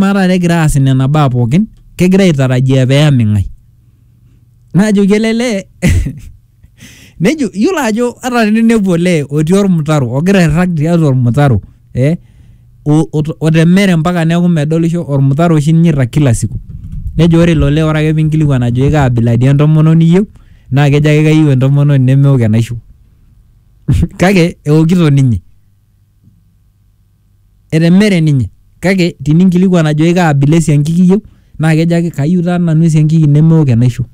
amaa taata egira aas nena baa pookin kegira aitarajia peyami ng'ae najoki ele lee nejo yiolo ajo ata teninepu olee otii ormutaro ogira airrag tiatua ormutaro eh, o- ot- otemere mpaka neeku medolisho ormutaro oshi ninye irrag kila siku nejo ore ilo lee ore ake pinkilikuan ajoki kaa abila dii entomononi iyieu naa kejo ake kayieu entomononi nemeok enaisho kake eokito ninye etemere ninye kake tininkilikuan ajoki kaa abila esiankiki iyieu naa kejo ake kayieu taa nanu esiankiki nemeok enaisho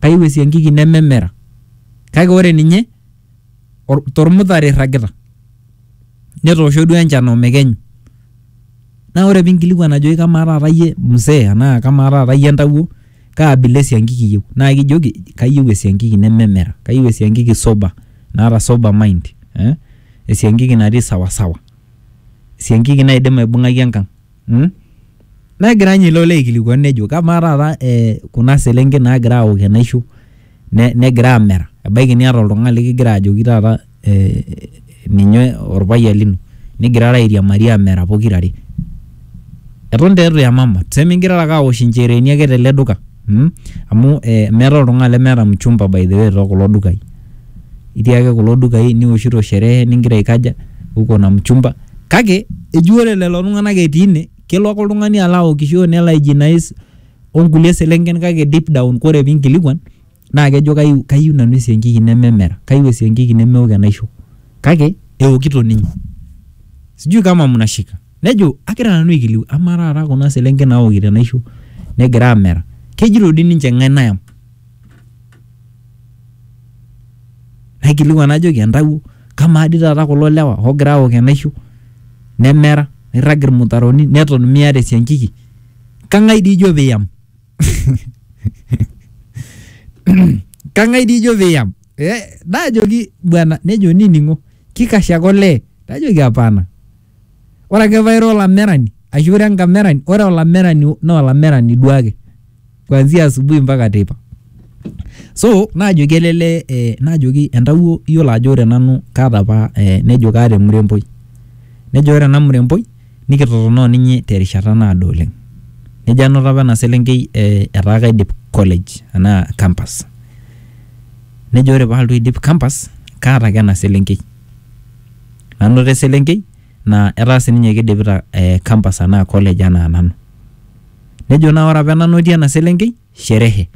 kayieu esiankiki nememera kake ore ninye or- tormutare irragita netoosho duo enchan omekenyu naa ore pinkilikuan ajoki kamaa taata iyie mzee anaa kamaa taata iyie entawuo Kaa abila e siankiki iyieu? Naa kijoki kayieu e siankiki nememera, kayieu e siankiki sober naata sober mind ee e siankiki natii sawa sawa, e siankiki naidim aibung'aki enkang' mm. Negira ninye ilo lee aikilikuanu nejo kamaa taata ee kuna selenken naagira aawok enaisho ne negira aamera, ebaiki niata oltung'ani lekigira ajoki taata. ninye orpayian lino nigirara airiamari amera pokira are eton taa itu iyamama tuseme ingirara ake awosh inchereeni ake tele duka mm amu eh meetae oltung'ani lemeeta mchumba by the way too kulo dukai itii ake kulo dukai niwoshito sherehe ningira aikaja uko na mchumba kake eji ore lelo tung'anak etii ine kelo ake oltung'ani alo awokisho nelo aijinais onkulie selenken kake deep down kore pinkilikua. naa kejo kayieu, kayieu nanu esiankiki nememera, kayieu esiankiki nemeok enaisho kake eokito ninye. Sijui kama mnashika. Nejo agira nanu aikiliku amaa taata kuna selenken naokito enaisho negira aamera kejito dii ninche ng'ae nayam? Naikilikuan najoki entawuo kamaa dii taata kulo lewa oogira aok enaisho nemera, neirrag ilmutaroni neton miata esiankiki kang'ae dii ijo piiyam? Kang'ai dii ijo piiyam? Eh, naajoki bwana nejo nining'o kikash ake olee najoki hapana. Ore ake paira olamerani ashu ira enkamerani, ore olamerani naa olamerani duake kuanzia asubuhi mpaka teipa. So naajoki ele lee eh, naajoki entawuo iyiolo ajo ore nanu kaata apa eh, nejo kaata emuremboi nejo ore ena muremboi. nikitotona o ninye te rishata naado oleng. Nejo anoto apa ena selenkei etaa kaidip college anaa campus. Nejo ore paalotu aidip campus kaata ake ena selenkei. Nanoto eselenkei naa etaa sininye keidipita campus anaa college anaa nanu. Nejo naa ore apa enanotie ena selenkei sherehe.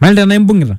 Malita enaimbung'ita.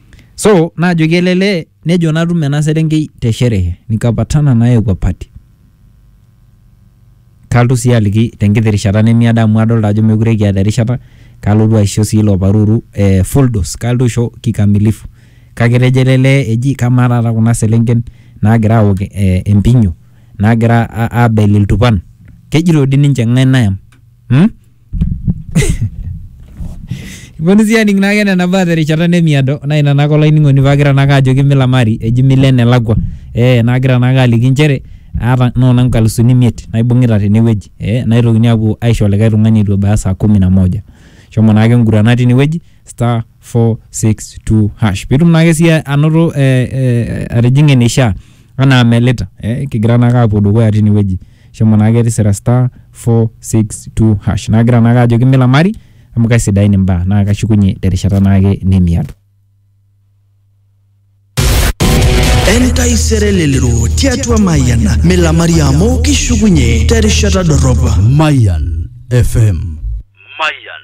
So naajoki ele lee nejo natum ena serenkei te sherehe nikapatana naye kwa party. Kalotu sii aliki tenkiti rishata nemiado amu adolta ajo mekure kiata erishata kalotu aisho sii ilo paruru eh, full dose kalotu aisho kikamilifu. Kake etejo ele lee eji kamaa taata kuna selenken naagira awok eh, empinyo naagira abel iltupan kejito dii ninche ng'ae nayam mm? Iponu sii aning naake nena baa terishata nemiado naa ina naake olainining'oni paagira naake ajoki milamari eji milo enelakua eh naagira naake aliki inchere aata noona inkalusuni imiet naibung'ita tenewueji eh naitokini aapuo aisho likae tung'ani etu ebaya saa kumi na moja shomo naake ingurana tinewueji star. 462 hash pitum naake siye anoto eh, eh, atijing'a eneishaa anaa melita eh, kigira naake apuo dukuya tinewueji shomo naake tisira star 462 hash nagira naake ajoki milamari amu kaisidain imbaa naa kashukunye terishata naake nemiato entaisere lelero tiatua mayian milamari amu kishukunye terishata dorropa Mayan FM. Mayan